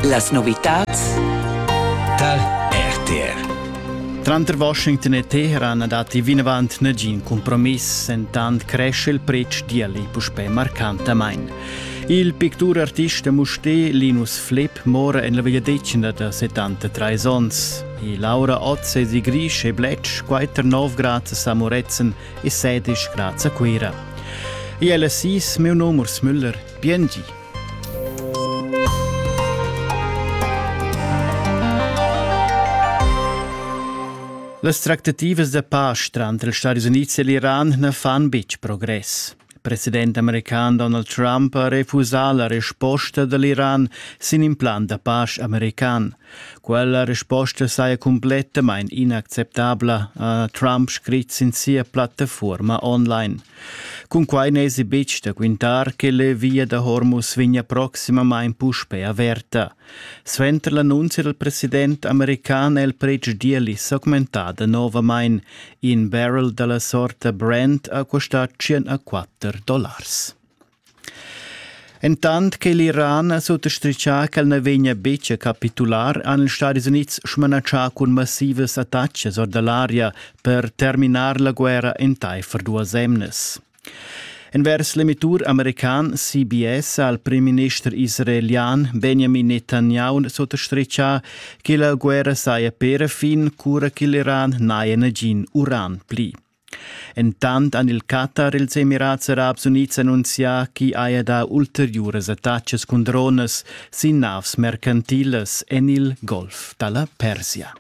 Las novitads tar RTR. Tranter Washington e Teheran datti vinavant nagin compromiss, entant cresce il pretsch d'ieli puspè marcantamain. Il picturartist Musté Linus Flipp mora en la vegliadetgna da 73 onns. E Laura Otz è di Grisch e Bletsch, quater 9 grad a Moretzen e 16 grad a Cuira. E ella sis, meu num Urs Müller, Bien di. Las tractativas da pace tranter ils Stati Unids e l'Iran na fan betg progress. Il president american Donald Trump ha refusà la resposta da l'Iran sin in plan da pace american. Quella resposta saja cumplettamain inacceptabla, ha Trump scrit sin sia plattafuorma online. Cunquai n'èsi betg da quintar che la via da Hormuz vegnia proximamain puspè averta. Suenter l'annunzia dal president american è il pretsch d'ieli s'augmentada novamain. In barrel da la sorta Brent ha custà 104 dollars. Entant che l'Iran ha suttastritgà ch'el na vegnia betg a capitular, han ils Stadis Unids smanatschà cun massivas attatgas or da l'aria per terminar la guerra entaifer duas emnas. Envers l'emittur american CBS ha il primminister israelian Benjamin Netanyahu suttastritgà che la guerra saja per fin cura che l'Iran n'haja nagin uran pli. Entant han il Qatar e ils Emirats Arabs Unids annunzià ch'i haja dà ulteriuras attacas cun dronas sin navs mercantilas en il Golf da la Persia.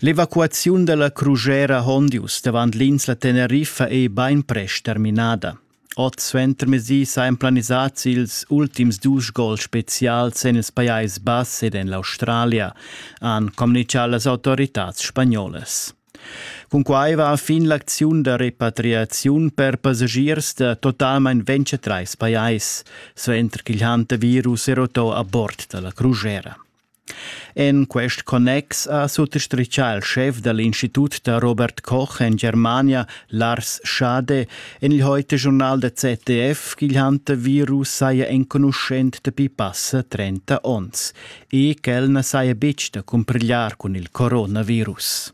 L'evacuaziun da la crugera Hondius davant l'insla Teneriffa è bainprest terminada. Ot suentermezdi sajan planisads ils ultims dus gols spezials en il Pajais Bass ed en l'Australia, han communitgà las autoritads spagnolas. Cunquai va fin l'acziun da repatriaziun per passagiers da totalmain 23 pajais, suenter ch'il hantavirus è rotò a bord da la crusera. En quest connex ha suttostrichà il schef da l'Institut da Robert Koch en Germania, Lars Schade, en il Heute-Journal der ZDF ch'il Hantavirus saja enconuschent dapi passa 30 onns e ch'el na saja betg da cumpigliar cun il coronavirus.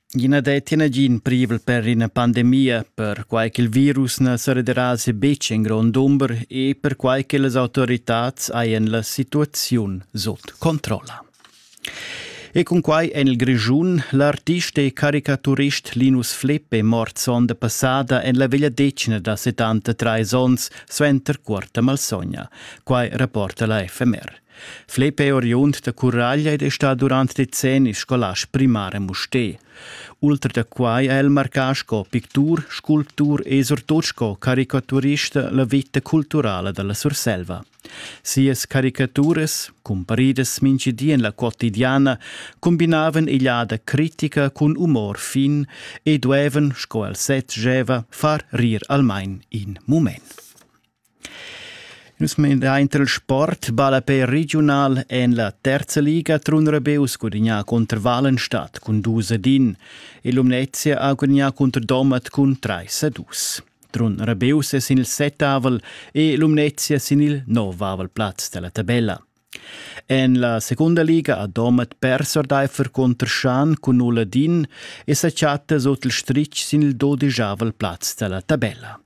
I na detti nagin privel per ina pandemia, perquai ch'il virus na serederasi betg in grond dumber e perquai che las autoritads hajan la situaziun sut controlla. E cun quai en il Grischun l'artista e caricaturist Linus Flipp è mort sonda passada en la vegliadetgna da 73 onns suenter cuorta malsogna. Quai rapporta la FMR. Flepe oriund da Curaglia ed è stà durant decennis scolast primar a Mustér. Ultra da quai è el marcà sco pictur, sculptur e surtut sco caricaturista la vita culturala da la Surselva. Sias caricaturas, cumparidas mintgi di en la quotidiana, combinavan egliada critica cun umor fin e duevan, sco el sez gieva, far rir almain in mument. Nus meinain il sport ballapè regiunal en la terza liga Trun Rabeus gudignà cunter Walenstadt cun dus ad in e Lumnezia ha gudignà cunter Domat cun trais a dus. Trun Rabeus è sin il settavel e Lumnezia sin il novavel plaz della tabella. En la secunda liga ha Domat pers ordaifer contr Schan cun null ad in e sa chatta sut il stritg sin il dodijavel plaz della tabella.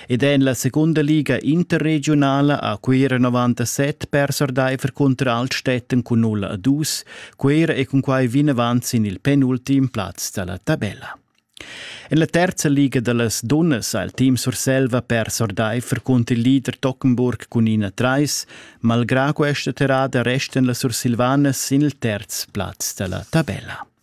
Ed en la segunda liga interregiunala ha Cuira 97 pers ordaifer cunter Altstätten cun 0 a 2. Cuira è cunquai vinavant sin il penultim plaz da la tabella. En la terza liga da las dunnas ha il team Surselva pers ordaifer cunter il leader Tockenburg cun 1-3. Malgrà questa terrada restan las Sursilvanas sin il terz plaz da la tabella.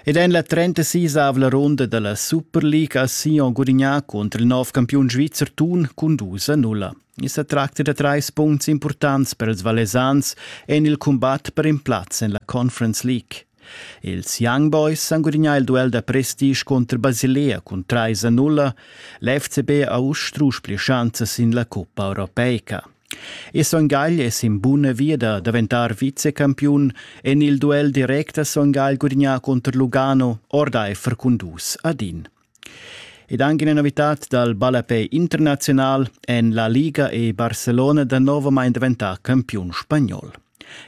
Ed en la 36-avla ronda dalla Super League ha Sion gudignà cunter il nov campiun svizzer Thun cun dus a nulla. I sa tracta da trais puncts impurtants per ils Valesans en il cumbat per in plaz en la Conference League. Ils Young Boys han gudignà il duell da prestige contro Basilea cun 3 a 0. L'FCB ha uss strusch pli schanzas sin la coppa europeica. E Son Gagl es in buna via da daventar vicecampiun en il duel direct da Son Gagl gudignà cunter Lugano ordaifer cun dus ad in. Ed anche una novità dal ballapè internazional en la Liga e Barcelona da nuovamain diventà campiun spagnol.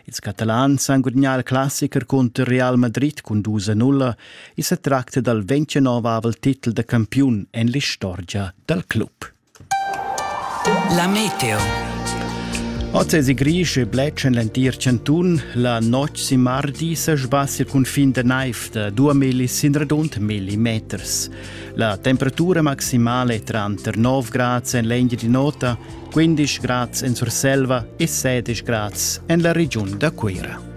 Ils catalans han gudignà il classicher cunter Real Madrid cun 2-0 e se tracta dal 29 titel da campiun en l'istorgia dal club. La meteo. Oz è gris e bletsch en l'entir chantun. La notg sin mardi sa sbassia il cunfin da naiv da 2 milli sin radund milli meters. La temperatura maximale è tranter 9 grads en l'Engiadin'Ota, 15 grads en Surselva e 16 grads en la regiun da Cuira.